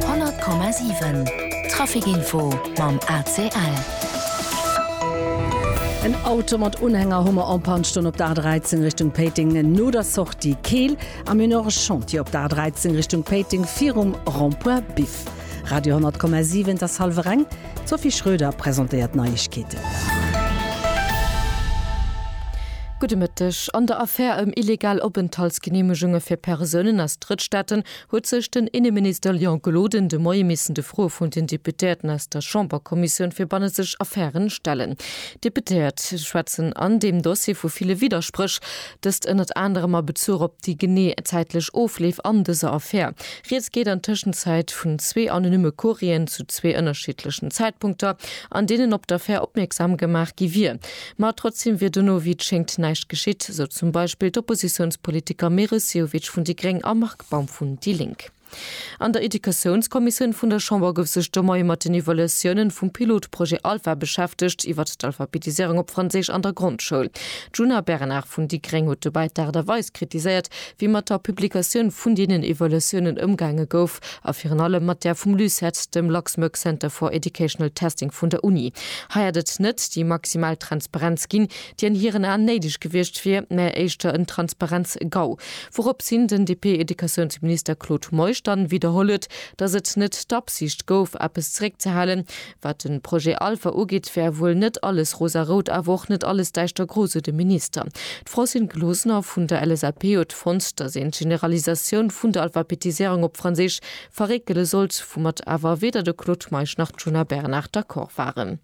100 Komma 7 Trafikinfo mam ACL. En Auto mat Unhänger Hummer en Panne stoung op der A13 Richtung Péiteng no der Sortie Keel am Une Heure Chantier op der A13 Richtung Péiteng virum Rond-point Biff. Radio 10,7 Et ass hallwer eng. D'Sophie Schröder presentéiert d'Neiegkeeten. Gudde Mëtteg. An der Affär ëm illegal Openthaltsgeneemegunge fir Persounen aus Drëttstaaten huet sech den Inneminister Léon Gloden de Moie missen de Froe vun den Deputéierten aus der Chamberkommissioun fir bannenzeg Affären stellen. D'Deputéiert schwätzen an deem Dossier vu ville Widderspréch. Dëst ënnert anerem a Bezuch op déi genee zäitlech Ofleef an dëser Affär. Rieds geet an Tëschenzäit vun zwee anonymme Courrieren zu zwee ënnerschiddlechen Zäitpunkter, an deenen op d'Affär opmierksam gemaach gi wier. Ma trotzdeem wier dono, wéi et schéngt, näischt geschitt, sou zum Beispill d'Oppositiounspolitiker Meris Sehovic vun déi gréng a Marc Baum vun déi lénk. An der Educatiounskommissioun vun der Chamber gouf sech de Moie mat den Evaluatiounen vum Pilotprojet Alpha beschäftegt iwwert d'Alphabetisierung op Franséisch an der Grondschoul. D'Djuna Bernard vun déi gréng huet dobäi d'Aart a Weis kritiséiert, wéi mat der Publikatioun vun deenen Evaluatiounen ëmgaange gouf a virun allem mat där vum LUCET, dem Luxembourg Center for Educational Testing vun der Uni. Hei hätt et net déi maximal Transparenz ginn, dien hiren Aan néideg gewiecht wier, mä éischter en Transparenz-GAU. Wourops hin den DP-Educatiounsminister Claude Meisch dann widderholl huet, datt et net d'Absicht gouf, eppes zeréckzehalen. Wat den Projet Alpha ugeet, wär wuel net alles rosa-rout, awer och net alles däischtergro, sou de Minister. D'Francine Closener vun der LSAP huet fonnt, datt een d'Generalisatioun vun der Alphabetiséierung op Franséisch verréckele sollt, woumat awer weder de Claude Meisch nach d'Djuna Bernard d'accord waren.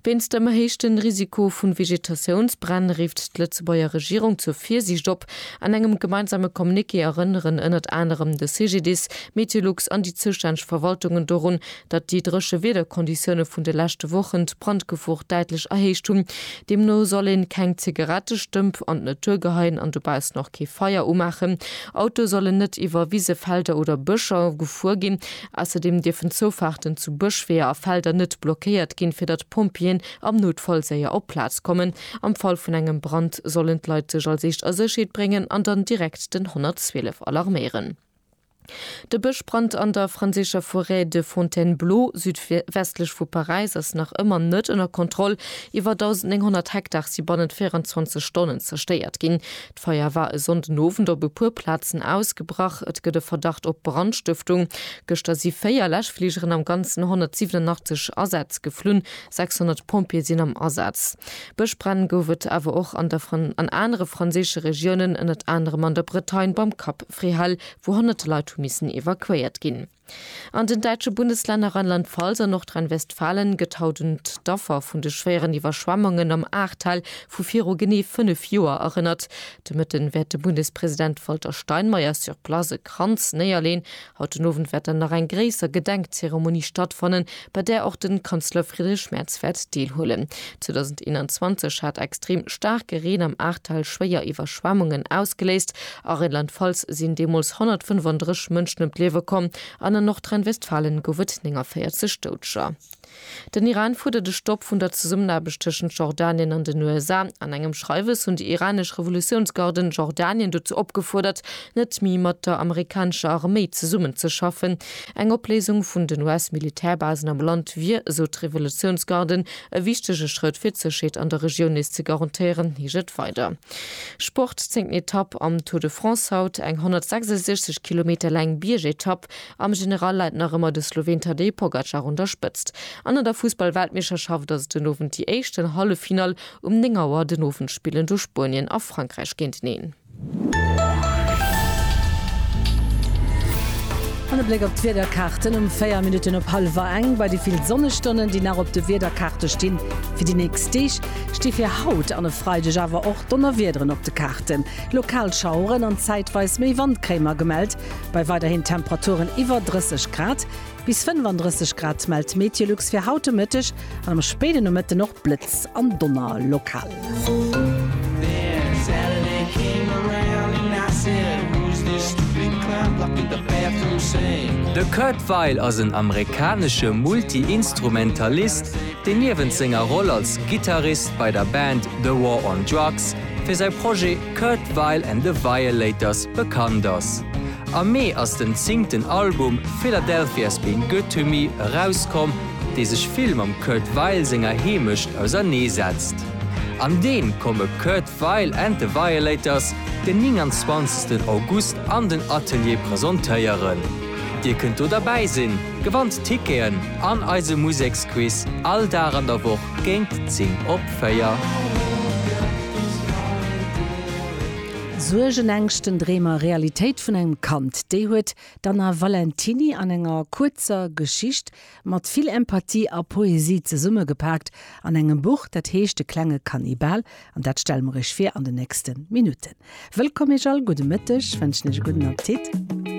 Wéinst dem erhéichten Risiko vu Vegetatiounsbränn rifft d'Lëtzebuerger Regierung zur Virsiicht op. An engem gemeinsame Communiqué erënneren ënnert anerem de CGDIS, Meteolux an déi zoustänneg Verwaltungen dorun, datt déi dréche Wiederkonditioune vun de leschte Wochen d'Brandgefor däitlech erhéicht hunn. Deemno soll een keng Zigarettestëmp an d'Natur geheien an dobaussen och kee Feier umaachen. Autoe sollen net iwwer Wise, Felder oder Bëscher gefuer ginn. Ausserdeem dierfen Zoufaarten zu Bëschweeër a Felder net blockéiert ginn, fir datt d'Pompjeeën am Noutfall séier op d'Plaz kommen. Am Fall vun engem Brand sollen d'Leit sech als Eescht a Sécherheet bréngen an dann direkt den 112 alarméieren. De Bëschbrand an der franséischer Forêt de Fontainebleau, südwestlech vu Paräis, ass nach ëmmer net ënner Kontroll. Iwwer 1.900 Hektar si bannent 24 Stonnen zerstéiert ginn. D'Feier war e Sonnden Owend op e puer Plazen ausgebrach. Et gëtt e Verdacht op Brandstëftung. Gëschter si 4 Läschfligeren, am Ganzen 187 Asätz geflunn. 600 Pompjeeë sinn am Asaz. Bëschbränn gouf et awer och an der an anere franséische Regiounen, ënnert anerem an der Bretagne beim Cap Fréhel, wou honnerte Leit hu missen evakuéiert ginn. An den däitsche Bundeslänner Rheinland-Pfalz a Nordrhein-Westfalen gëtt haut un d'Affer vun de schwéieren Iwwerschwemmungen am Ahrtal vu viru genee 5 Joer erënnert. De Mëtten wäert de Bundespresident Walter Steinmeier sur place e Kranz néierleen. Haut den Owend wäert dann nach eng gréisser Gedenkzeremonie stattfannen, bei där och de Kanzler Friedrich Merz wäert deelhuelen. 2021 hat extrem staarke Reen am Ahrtal schwéier Iwwerschwemmungen ausgeléist. A Rheinland-Pfalz sinn deemools 135 Mënschen ëm d'Liewe komm an a Nordrhein-Westfalen gouf et 49 Doudeger. Den Iran fuerdert e Stopp vun der Zesummenaarbecht tëschent Jordanien an den USA. An engem Schreiwes hunn déi iranesch Revolutiounsgarden Jordanien dozou opgefuerdert, net méi mat der amerikanescher Arméi zesummenzeschaffen. Eng Opléisung vun den US-Militärbasen am Land wier, esou d'Revolutiounsgarden, e wichtege Schrëtt fir d'Sécherheet an der Regioun nees ze garantéieren, heescht et weider. Sport, Zéngten Etapp am Tour de France haut, eng 166 Kilometer laang Biergetapp. Am General läit nach ëmmer de Sloween Tadej Pogacar un der Spëtzt. An an der Fussball-Weltmeeschterschaft ass et den Owend déi éischten Halleffinall. Um 9 Auer den Owend spillen do Spuenien a Frankräich géinteneen. An e Bléck op d'Wiederkaarten um 4 Minutten op hallwer eng. Bei de vill Sonnestonnen, déi nach op de Wiederkaarte stinn fir déi nächst Deeg, sti fir haut an e Freideg awer och Donnerwiederen op de Kaarten. Lokal Schaueren an zäitweis méi Wand kréie mer gemellt, bei weiderhin Temperaturen iwwer 30 Grad. Bis 35 Grad mellt d'Meteolux fir haut de Mëtteg an am spéiden Nomëtten och Blëtz an Donner lokal. De Kurt Weill ass en amerikanesche Multi-Instrumentalist, deen niewent senger Roll als Gittarist bei der Band The War on Drugs, fir säi Projet Kurt Weill and the Violators bekannt ass. Am Mee ass den zingten Album Philadelphia's Been Good To Me erauskomm, dee sech vill mam Kurt Weill senger Heemecht ausernee setzt. An dee komme Kurt Weill and The Violators den 29 August an den Atelier presentéieren. Dir kënnt do derbäi sinn, gewannt Ticketen an eise Museksquiz all Dag an der Woch géint 10 op 4. Suergen, Ängschten, Dreem a Realitéit vun engem Kand, déi huet d'Anna Valentiny an enger kuerzer Geschicht mat vill Empathie a Poesie zesummegepaakt an engem Buch, dat heescht De klenge Kannibal an dat stelle mer iech vir an den nächste Minutten. Wëllkomm iech all, gudde Mëtteg, wënschen iech e gudden Appetit.